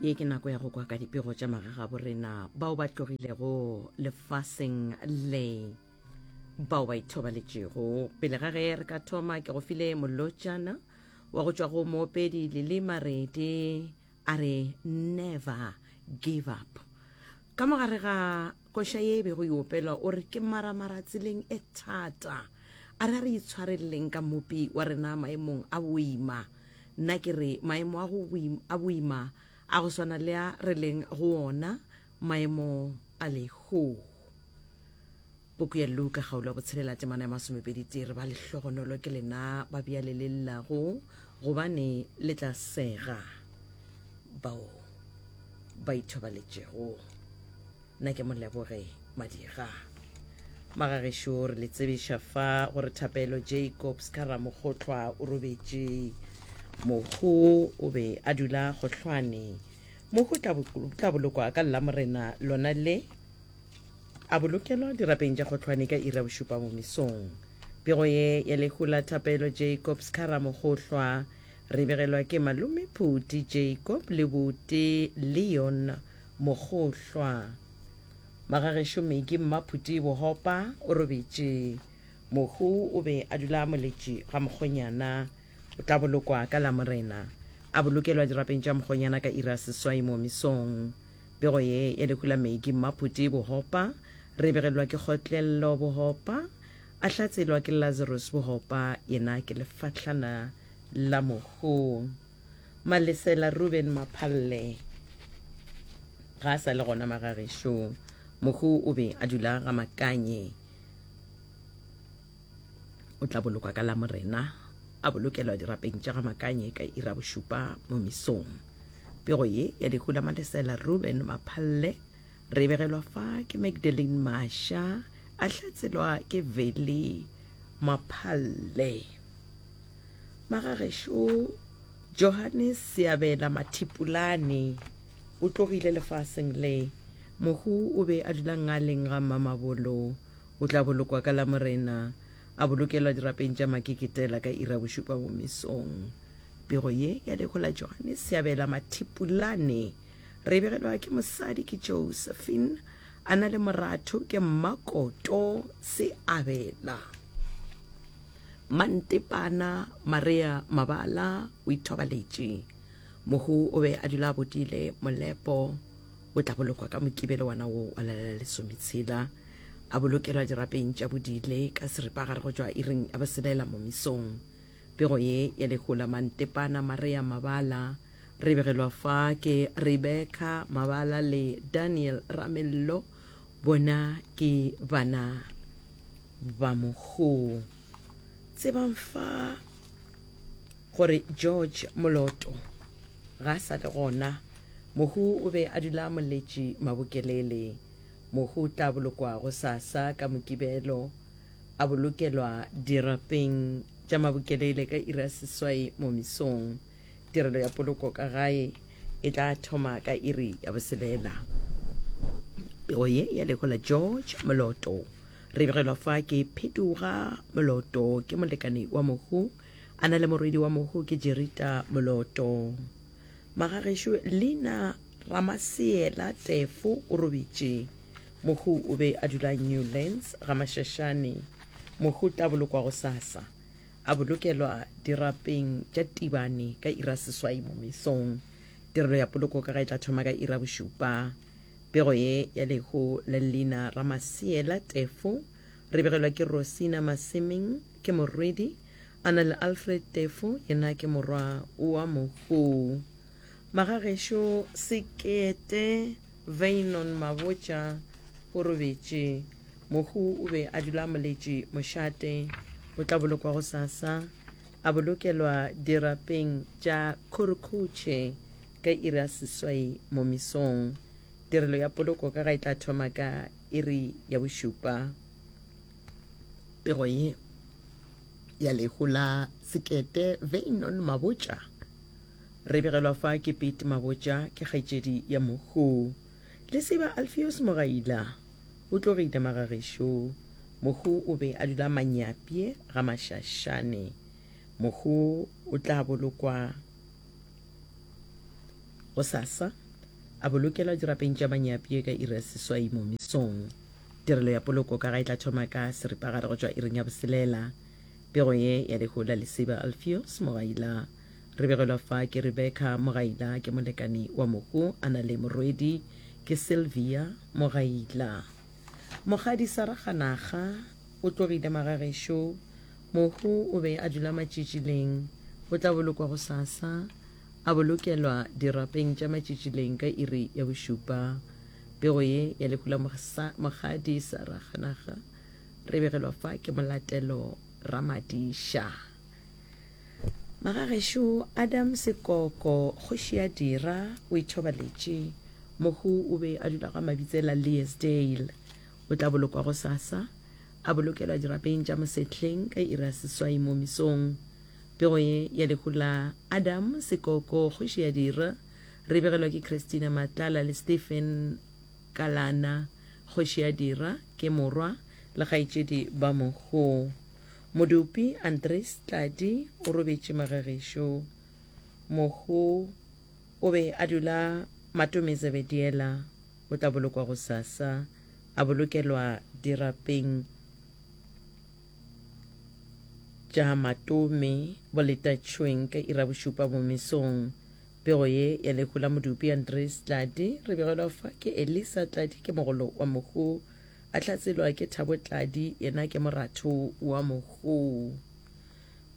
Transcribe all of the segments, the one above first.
ye ke nako ya go kwa ka dipego tša magagabo rena bao ba tlogilego lefaseng le bao ba ithobaletšego pele ga ge re ka thoma ke go file molotšana wa go tšwa go moopedi lele maredi a re never give up ka mogare ga Koša ye e bego e opelwa o re ke maramara tseleng e thata. A re a re itshwarelleng ka Mmopi wa rena maemong a boima. Nna ke re maemo a go a boima a go swana le a re leng go ona, maemo a lehoo. Puku ya Luka kgaolo ya botshelela temana ya masomepedi tee re ba lehlogonolo ke lena ba bjale le llago gobane le tla sega. bao ba ithobaletšego na ke moleboge madira magagešo re le tsebiša fa gore thapelo jacobs ka ramokgotlhwa o robetše mohu o be a dula gohlwane mohu tla bolokwa ka llamorena lona le a bolokelwa dirapeng tša kgotlhwane ka ira bošupa mo mesong pego ye ya lehu la thapelo jacobs ka ramokgotlhwa Re begelwa ke Malome Phuti Jacob le Buti Leon Mogohlwa. Magagešo Miki Mmaphuti Bohopa o robetše. Mohu o be a dula a moletše ga Mokgonyana. O tla bolokwa ka Lamorena. A bolokelwa dirapeng tša Mokgonyana ka iri ya seswai momisong. Pego ye ya lehu la Miki Mmaphuti Bohopa re begelwa ke Kgotlello Bohopa. A hlatselwa ke Lazarus bogopa, yena ke lefahlana la mogong. Malesela Ruben Maphalle ga a sa le gona magagešong. Mohu o be a dula ga Makanye. O tla bolokwa ka Lamorena, a bolokelwa dirapeng tša ga Makanye ka ira bošupa mo misong. Pego ye ya lehu la Malesela Ruben Maphalle Re begelwa fa ke Magdalene Masha, a hlatselwa ke Veli Maphalle. Magagešo Johannes Seabela Mathipulane o tlogile lefaseng le. Mohu o be a dula ngaleng ga Mmamabolo. O tla bolokwa ka Lamorena, a bolokelwa dirapeng tša Makeketela ka ira bošupa bo mesong. Pego ye ya lehola Johannes Seabela Mathipulane Re begelwa ke mosadi ke Josephine, a na le moratho ke Mmakoto Seabela. Mantepana Marea Mabala o ithobaletše. Mohu o be a dula a bodile, molepo o tla bolokwa ka Mokibelo wana wo wa lala la lesometshela. A bolokelwa dirapeng tša bodile ka seripagare go tšwa iring ya boselela momisong. Pego ye ya lehu la Mantepana Marea Mabala Re begelwa fa ke Rebecca Mabala le Daniel Ramello, bona ke bana ba mogou. Tsebang fa gore George Moloto ga a sa le gona. Mohu o be a dula a moletše Mabokelele. Mohu o tla bolokwa gosasa ka Mokibelo, a bolokelwa dirapeng tša Mabokelele ka iri ya seswai mo mesong. Tirelo ya poloko ka gae e tla thoma ka iri ya boselela. Pego ye ya lego la George Moloto. Re begelwa fa ke Phetuga Moloto ke molekane wa Mohu. A na le morwedi wa Mohu ke Jerita Moloto. Magagešo Lina Ramaseela Tefo o robitše. Mohu o be a dula Newlands ga Mashashane. Mohu tla bolokwa gosasa. a bolokelwa dirapeng tša tibane ka ira seswai mo mesong tirelo ya poloko ka ga e tla thoma ka ira bošupa pego ye ya lehu la leina ra maseela tefo re begelwa ke rosina masemeng ke morwedi a na le alfred tefo yena ke morwa wa mogou magagešo sekete Veynon Mabotja o robetše. Mohu o be a dula a moletše mošate. O tla bolokwa gosasa, a bolokelwa dirapeng tša Khurukhutshe ka iri ya seswai mo mesong. Tirelo ya poloko ka ga e tla thoma ka iri ya bošupa. Pego ye ya lehu la sekete, Veynon Mabotja. Re begelwa fa ke Pete Mabotja, ke kgaetšedi ya Mokhu. Le tseba Alfios Mogaila? O tlo re inamaga gešo. Mokhu o be a dula Manyapye ga Mashashane. Mokhu o tla bolokwa gosasa, a bolokelwa dirapeng tša Manyapye ka iri ya seswai mo mesong. Tirelo ya poloko ka ga e tla thoma ka seripagare go tšwa iring ya boselela. Pego ye ya lehola le tseba Alfios Mogaila. Re begelwa fa ke Rebecca, mogaila ke molekani wa mohu, a na le morwedi ke Sylvia, mogaila. Mogadi Saraga Naga o tlogile magagešo, mohu o be a dula Matšitšileng, o tla bolokwa gosasa, a bolokelwa dirapeng tša Matšitšileng ka iri ya bošupa. Pego ye ya lehu la Mogadi Saraga Naga re begelwa fa ke Molatelo Ramadiša. Magagešo Adam Sekoko, kgoši ya Dira, o ithobaletše. Mohu o be a dula ga Mabitsela Leesdale. O tla bolokwa gosasa, a bolokelwa dirapeng tša Mosehleng ka iri ya seswai mo mesong. Pego ye ya lehu la Adam Sekoko, kgoši ya Dira, re begelwa ke Christina Matlala le Stephen Kalana, kgoši ya Dira, ke morwa le kgaetšedi ba mohu. Modupi Andries Tladi o robetše Magegesho. Mohu o be a dula Matome Zebediela o tla bolokwa gosasa, a bolokelwa dirapeng tša Matome Boletatšhweng ka ira bošupa mo mesong. Pego ye ya lehu la Modupi Andries Tladi re begelwa fa ke Elisa Tladi ke mogolo wa mohu. A hlatselwa ke Thabo Tladi, yena ke moratho wa mogoo.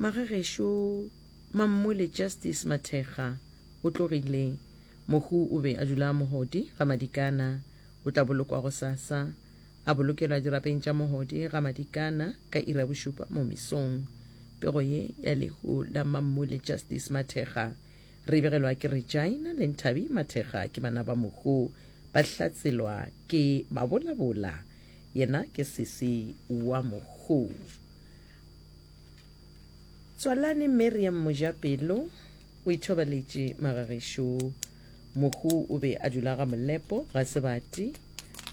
Magagešo Mammole Justice Mathekga o tlogile. Mogoo o be a dula a Mohodi ga Madikana. O tla bolokwa gosasa. A bolokelwa dirapeng tša Mohodi ga Madikana ka iri ya bošupa mo mesong. Pego ye ya lehu la Mammole Justice Mathekga Re begelwa ke Regina le Nthabi Mathekga ke bana ba Mohu, ba hlatselwa ke Mabolabola yena ke sesi wa Mohu. Tswalane Miriam Mojapelo o ithobaletše magagešo Mohu o be a dula ga Molepo ga Sebati,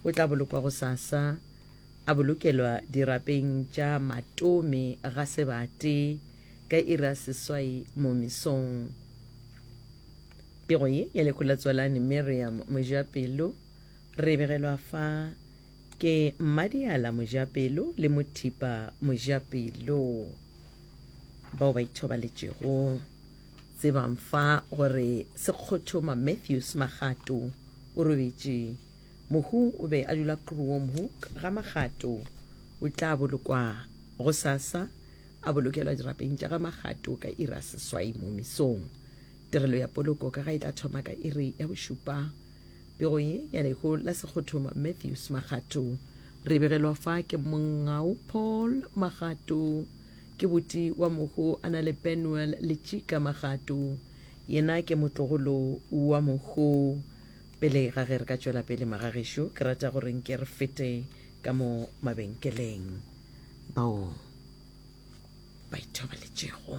o tla bolokwa gosasa a bolokelwa dirapeng tša Matome ga Sebati. ka iri ya seswai mo mesong. Pego ye ya lekhwi la Tswalani Miriam Mojapelo re e begelwa fa ke Mmadiala Mojapelo le Mothipa Mojapelo bao ba ithobaletšego. Tsebang fa gore Sekgothoma Matthews Magato o robetše. Mohu o be a dula Kruomhoek ga Magato. O tla bolokwa gosasa A bolokelwa dirapeng tša ga Magato ka iri ya seswai mo mesong. Tirelo ya poloko ka ga e tla thoma ka iri ya bošupa. Pego ye ya lehu la sekgothoma Matthews Magato. Re begelwa fa ke Mongau Paul Magato. Ke boti wa mohu a na le Penuel Letšika Magato. Yena ke motlogolo wa mohu. Pele ga ge re ka tšwela pele magagešo, ke rata gore nke re fete ka mo mabenkeleng. Bao. ba ithobaletšego.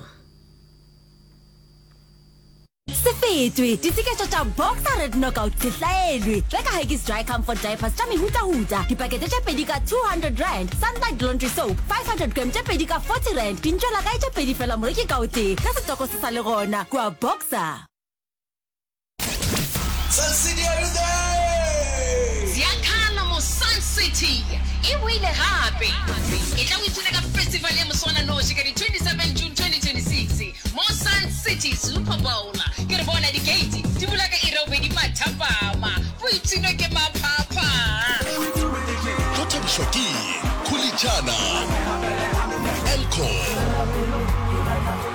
Se fetwe, ditseketšo tša Boxer Red Knockout di hlaelwe. Reka Huggies Dry Comfort Diapers tša mehutahuta, dipakete tše pedi ka 200 rand, Sunlight Laundry Soap 500 gram tše pedi ka 40 rand, dintšwelakae tše pedi fela moreki ka o tee. Ge setoko se sa le gona, kua Boxer. Ziakalo mo Sun City e boile gape. E tla o ithuta ka festival ya moswananoši ka di 27 June 2026 mo Sun City Super Bowl. Ke re bona dikeiti di bula ka iri ya bobedi mathapama. Boipshino ke maphapha. Go thabišwa ke Khulitšana, Elcor.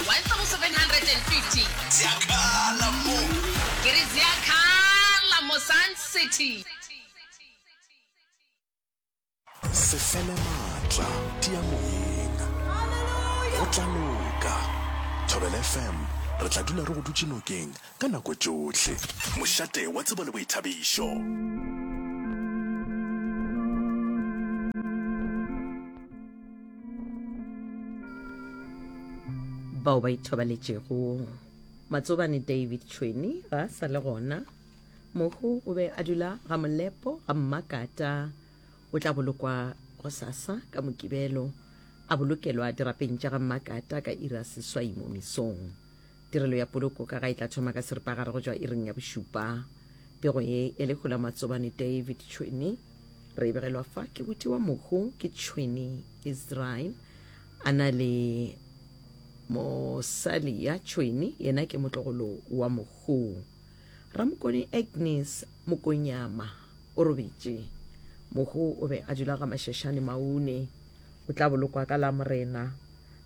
1750. Ziakhala mo. Ke re ziakhala mo Sun City. Se fele maatla, tia moyeng. Go tla loka. Thobela FM, re tla dula re go dutše nokeng ka nako tšohle. Mošate wa tsebo le boithabišo. bao ba ithobaletšego matsobane david tšhweni ga a sa le gona mohu o be a dula ga molepo ga mmakata o tla bolokwa go sasa ka mokibelo a bolokelwa dirapeng tša ga mmakata ka ira seswai mo mesong Tirelo ya poloko ka ga e tla thoma ka seripagare go tšwa iring ya bošupa. Pego ye ya lehu la Matsobane David Tšhwene re e begelwa fa ke boti wa mohu ke Tšhwene Israel a na le mosali ya Tšhwene yena ke motlogolo wa mohu. Ramokone Agnes Mokonyama o robetše. Mohu o be a dula ga Mashashane Maune. O tla bolokwa ka la Morena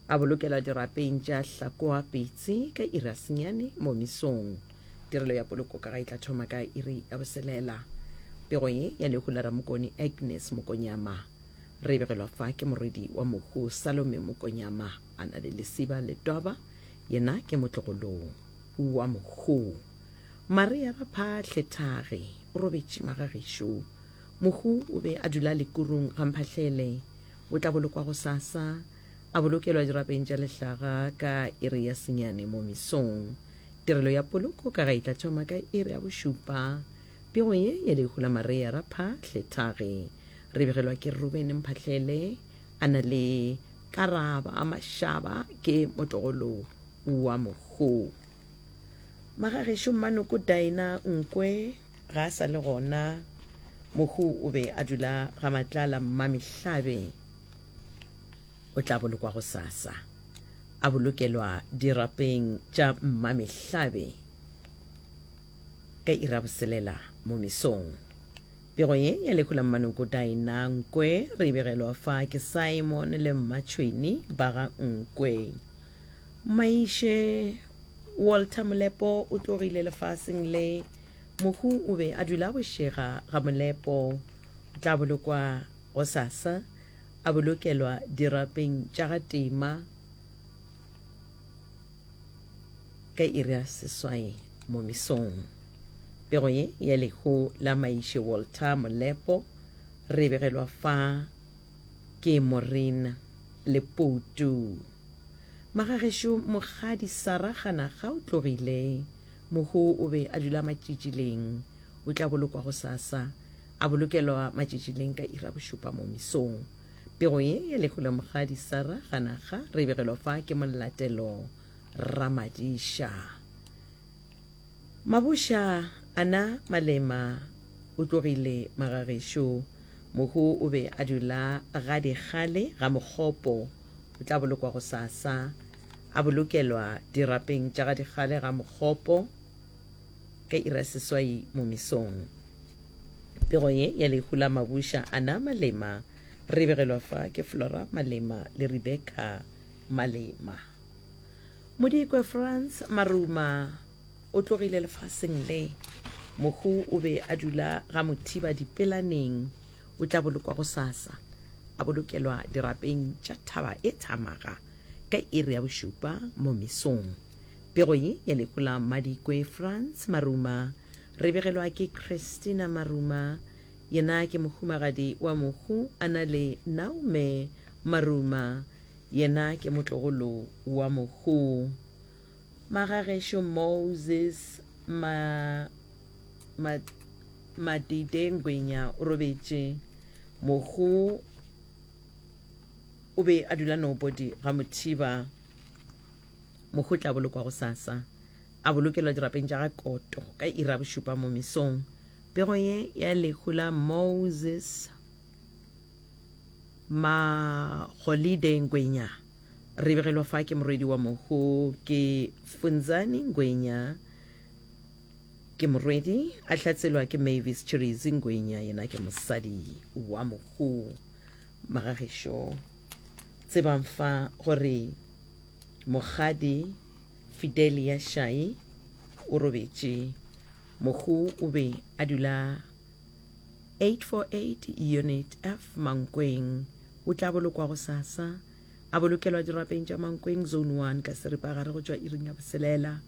A bolokela dirapeng tša Hlakoa Pitsi ka iri ya senyane mo mesong. Tirelo ya poloko ka ga e tla thoma ka iri ya boselela. Pego ye ya lehu la Ramokoni Agnes Mokonyama. Re e begelwa fa ke morwedi wa mohu Salome Mokonyama, a na le lesiba le toba, yena ke motlogolong wa mohu. Maria Raphahle Thage o robetše magagešo. Mohu o be a dula lekurung ga Mphahlele. O tla bolokwa gosasa. A bolokelwa dirapeng tša lehlaga ka iri ya senyane mo mesong. Tirelo ya poloko ka ga e tla thoma ka iri ya bošupa. Pego ye ya lehu la Maria ra Phahle, thage, re begelwa ke Rubene Mphahlele, a na le Karaba Mashaba ke motogolo wa mohu. Magagešo Mmanoko Daina Nkwe ga a sa le gona, mohu o be a dula ga Matlala Mmamehlabe. o tla bolokwa gosasa, a bolokelwa dirapeng tša mmamehlabe ka iraboselela mo mesong. Pego ye ya lehu la mmanoko Daina Nkwe re e begelwa fa ke Simon le mmatšhweni ba ga Nkwe. Maiše Walter Molepo o tlogile lefaseng le, mohu o be a dula bošega ga Molepo, o tla bolokwa Gosasa, a bolokelwa dirapeng tša ga Tema ka iri ya seswai mo mesong. Pego ye ya lehu la Maiše Walter Molepo re e begelwa fa ke Maureen Leputu. Magagešo Mokgadi Sara Kganaga o tlogile, mohu o be a dula Matšitšileng, o tla bolokwa gosasa A bolokelwa matšatši leng ka iri ya bošupa mo mesong. Pego ye ya lehu la mogadi Sara Ganaga re e begelwa fa ke Molatelo Ramadiša. Mabuša ana Malema o tlogile magagešo. Mohu o be a dula ga dikgale ga Mokgopo. O tla bolokwa gosasa. A bolokelwa dirapeng tša ga dikgale ga Mokgopo. Ka iri ya seswai mo mesong, pego ye ya lehu la Mabusha Anna Malema re begelwa fa ke Flora Malema le Rebecca Malema. Modikwe Frans Maruma o tlogile lefaseng le. Mohu o be a dula ga Mothiba Dipelaneng, o tla bolokwa gosasa, a bolokelwa dirapeng tša thaba e Thamaga ka iri ya bošupa mo mesong. Pego ye ya lehu la Madikwe Frans Maruma re begelwa ke Christina Maruma, yena ke mohumagadi wa mohu a na le Naume Maruma, yena ke motlogolo wa mohu. Magagešo Moses Ma, Ma, Madide Ngwenya o robetše. Mohu o be a dula Nobody ga Mothiba. Mohu o tla bolokwa gosasa, a bolokelwa dirapeng tša ga Koto ka iri ya bošupa mo mesong. Pego ye ya lehu la Moses Magolide Ngwenya re begelwa fa ke morwedi wa mohu ke Funzani Ngwenya ke morwedi, a hlatselwa ke Mavis Chirizi Ngwenya yena ke mosadi wa mohu. Magagešo. Tsebang fa gore mokgadi Fidelia Shai o robetše. Mohu o be a dula 848 Unit F Mankweng. O tla bolokwa gosasa. A bolokelwa dirapeng tša Mankweng Zone 1 ka seripagare go tšwa iring ya boselela.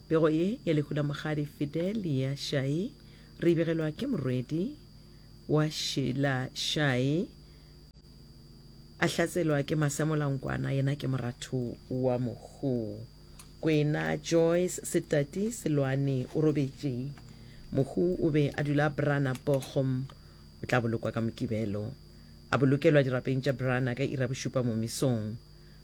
Pego ye ya lehu la mokgadi Fidelia Shai re e begelwa ke morwedi wa Sheila Shai. A hlatselwa ke Masemola-Nkwana, yena ke moratho wa Mokgo kwena. Joyce Setati Seloane o robetše. Mokgo o be a dula Brana Bochum. O tla bolokwa ka Mokibelo. A bolokelwa dirapeng tša Brana ka iri ya bošupa momisong.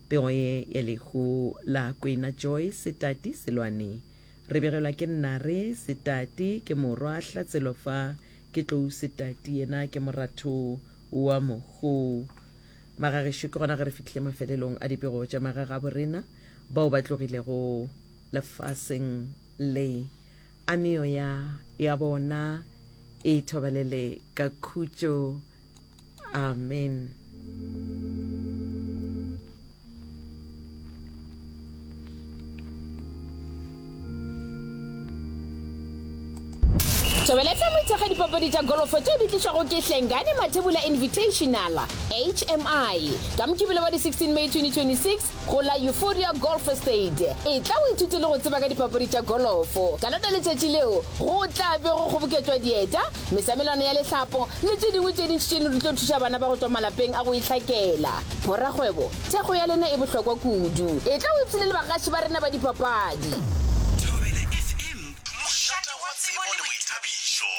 Pego ye ya lehu la kwena Joyce Setati Seloane re begelwa ke Nnare Setati, ke morwa Hlatselwa fa ke Tlou Setati, yena ke moratho wa mogou. Magagešo ke gona ge re fihlile mafelelong a dipego tša magagabo rena bao ba tlogilego lefaseng le, a meoya ya bona e thobalele ka khutšo. Amen. Tšwebeletsa moitshega dipapadi tša golofo tšeo di tlišwago ke Hlengane Mathebula Invitational, HMI, ka Mokibelo wa di-16 May 2026 go la Euphoria Golf Estate. E tla o ithute le go tseba ka dipapadi tša golofo. Ka lona letšatši leo go tla be go kgoboketšwa dieta mesamelwana ya lehlapo le tše dingwe tše dintši tše ne di tlo thuša bana ba go tšwa malapeng a go itlhakela. Borakgwebo, thekgo ya lena e bohlokwa kudu. Etla o ipshine le bagaši ba rena ba dipapadi. Thobela FM, mošate wa tsebo le boithabišo.